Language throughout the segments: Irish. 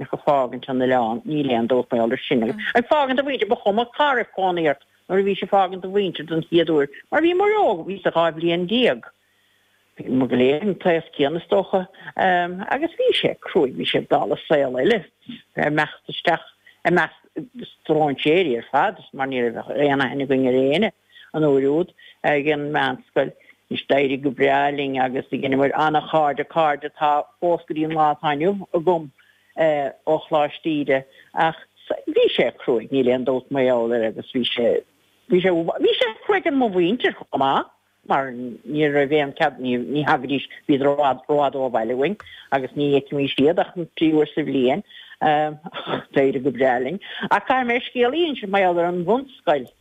Ach ag fágaint an oileán níl aon dabht mar gheall air sin agus ag fágaint do mhuintir ba chuma cá raibh cónaí ort nuair a bhís ag fágaint do mhuintir don chéad uair mar bhíomar óg, bhíos-sa dhá bhliain déag. Bhíomar go léir an t-aos céanna is dócha agus bhí sé cruaidh, bhí sé dála saol eile a bheith ag imeacht isteach i measc stróinséirí ar fad mar ní raibh aon aithne againn ar éinne. an uair úd ag an meánscoil. Anois d'éirigh go breá linn agus dheineamar an-chairde, cairde atá fós go dtí an lá atá inniu agam ó Choláiste Íde. Ach bhí sé cruaidh, níl aon dabht mar gheall air agus bhí sé, bhí sé, bhí sé cruaidh ar mo mhuintir chomh maith mar ní raibh aon cead, ní, ní thagaidís, bhíodar i bhfad, i bhfad ó bhaile uainn agus ní fheicimís iad ach an trí uair sa bhliain. D'éirigh go breá linn. Ach caithfidh mé scéal a insint mar gheall ar an bhunscoil.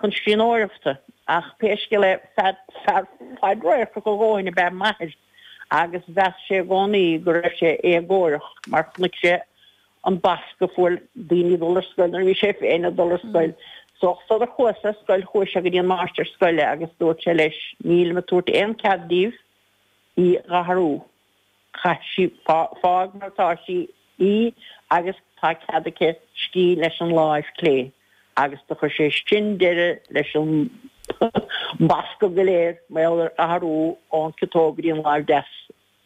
chun scríbhneoireachta ach pé scéal é fear fadradharcach a dhóthain ab ea m'athair agus mheas sé i gcónaí go raibh sé éagórach mar chonaic sé an bascadh a fuair daoine ag dul ar scoil nuair a bhí sé féin ag dul ar scoil. So sular chuas ar scoil chuaigh sé go dtí an máistir scoile agus dúirt sé leis, 'Nílim ag tabhairt aon chead daoibh í a athrú. Caithfidh sí fág mar tá sí í agus tá cead aici scríobh leis an láimh chlé agus do chuir sé sin deireadh leis an mbascadh go léir mar gheall ar athrú ón ciotóg go dtí an láimh deas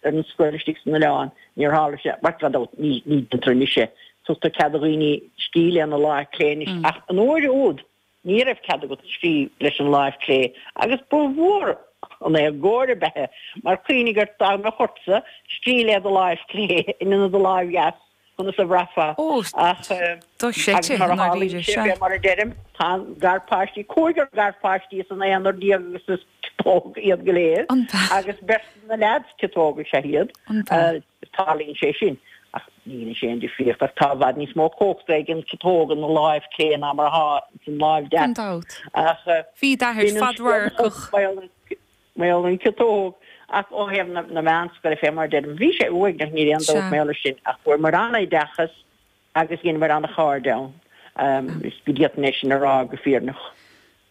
ar an scoil istigh san oileán. Níor tharla sé mar gan dabht ní deintear anois é. Tugtar cead do dhaoine scríobh lena láimh chlé anois ach an uair úd Ní raibh cead agat scríobh leis an láimh chlé agus ba mhór an éagóir ab ea é mar cuimhnigh ort dá mbeadh ortsa scríobh le do láimh chlé in ionad do láimh dheas conas a bhraithfeá Ó, ach do shite agus mar i a tharlaíonn ndáiríre, sé sea. fé mar a deirim tá na garpháistí, cúigear garpháistí as an aonar déag agus is. Ciotóg iad go léir agus beirt de na leaids, ciotóg is ea iad. Tarlaíonn sé sin ach dhein sé an-difríocht ach tá i bhfad níos mó cumhachta ag an ciotóg ina láimh clé ná mar atá ins an láimh deas. Gan dabht. Ach Bhí d'athair bíonn an scéal fadradharcach. fós mar gheall ar an ciotóg ach ó thaobh na na meánscoile fé mar a deirim, bhí sé uaigneach, níl aon dabht Sea. mar gheall air sin ach fuaireamar an-oideachas agus dheineamar an-chairde ann. Is go gcaithfidh mé sin a rá go fírinneach.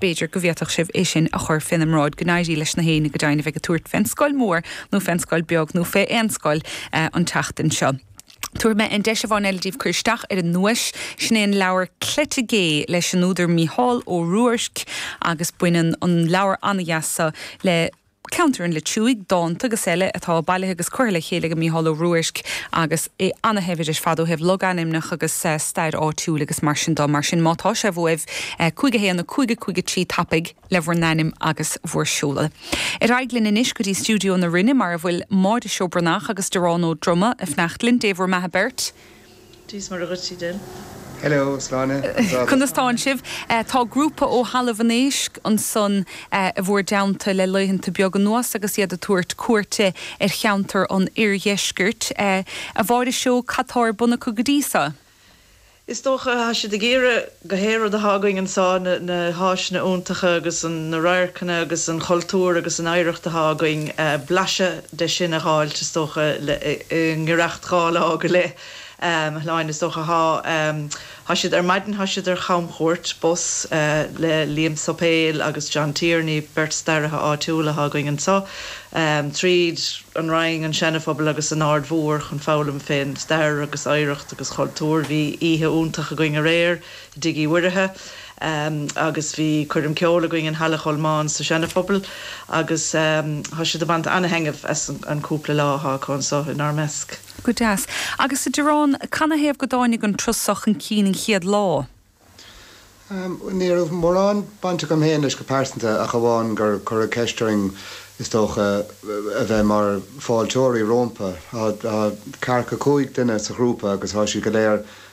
b'fhéidir go bhféadfadh sibh é sin a chur féna mbráid, go n-éirí leis na héinne go deimhin a bheidh ag tabhairt fén scoil mhór nó fén scoil bheag nó fé aon scoil an tseachtain seo. Tabharfaidh mé an deis amháin eile daoibh cur isteach ar an nduais, sin é an leabhar Cleite Gé leis an údar Mícheál Ó Ruairc agus baineann an leabhar an-deas so le. ceantar an Leitriúigh, dánta agus eile atá bailithe agus curtha le chéile ag Mícheál Ó Ruairc agus é ana-shaibhir ar fad ó thaobh logainmneacha agus stair áitiúil agus mar sin de. Mar sin, má tá sé uaibh, 51 553 tapaidh le bhur n-ainm agus bhur seoladh. Ar aghaidh linn anois go dtí stiúideo na Rinne mar a bhfuil Máire Seó Breathnach agus Dearán Ó Droma ag fanacht linn. Dé bhur mbeatha beirt. Dia is Muire dhuit, a Shláine. Hello, Sláine, an dá do. Conas tánn sibh? Tá grúpa ó Thalamh an Éisc ansan i bhur dteannta le laethanta beaga anuas agus iad ag tabhairt cuairte ar cheantar an Oirdheiscirt. A Mháire Seó, cad tá ar bun acu go dtí so? Is dócha, tá siad ag iarraidh. gach aon rud atá againn anso, na háiseanna iontacha agus na radharcanna agus an chultúr agus an oidhreacht atá againn, blaiseadh de sin a dh'fháilt is dócha i ngiorracht dhá lá go leith, Shláine is dócha. Thá, thá siad, ar maidin thá siad ar chamchuairt bus le Liam Suipéil agus John Tierney, beirt staraithe áitiúla atá againn anso. tríd an Rinn, an Seana-Phobal agus an Aird Mhór chun foghlaim fén stair agus oidhreacht agus chultúr. Bhí oíche iontach againn aréir i dTigh Uí Mhuirithe agus bhí coirm ceoil againn in Halla Cholmáin sa Seana-Phobal agus thá siad ag baint ana-thaitneamh as an cúpla lá athá acu anso in ár measc. Go deas. Agus a Dhearáin, canathaobh go dtáinig an turas so chun cinn an chéad lá? Ní raibh mórán baint agam féin leis go pearsanta ach amháin gur cuireadh ceist orainn is dócha a bheith mar fáilteoirí rómpa. Tá ceathracha cúig duine sa ghrúpa agus tá siad go léir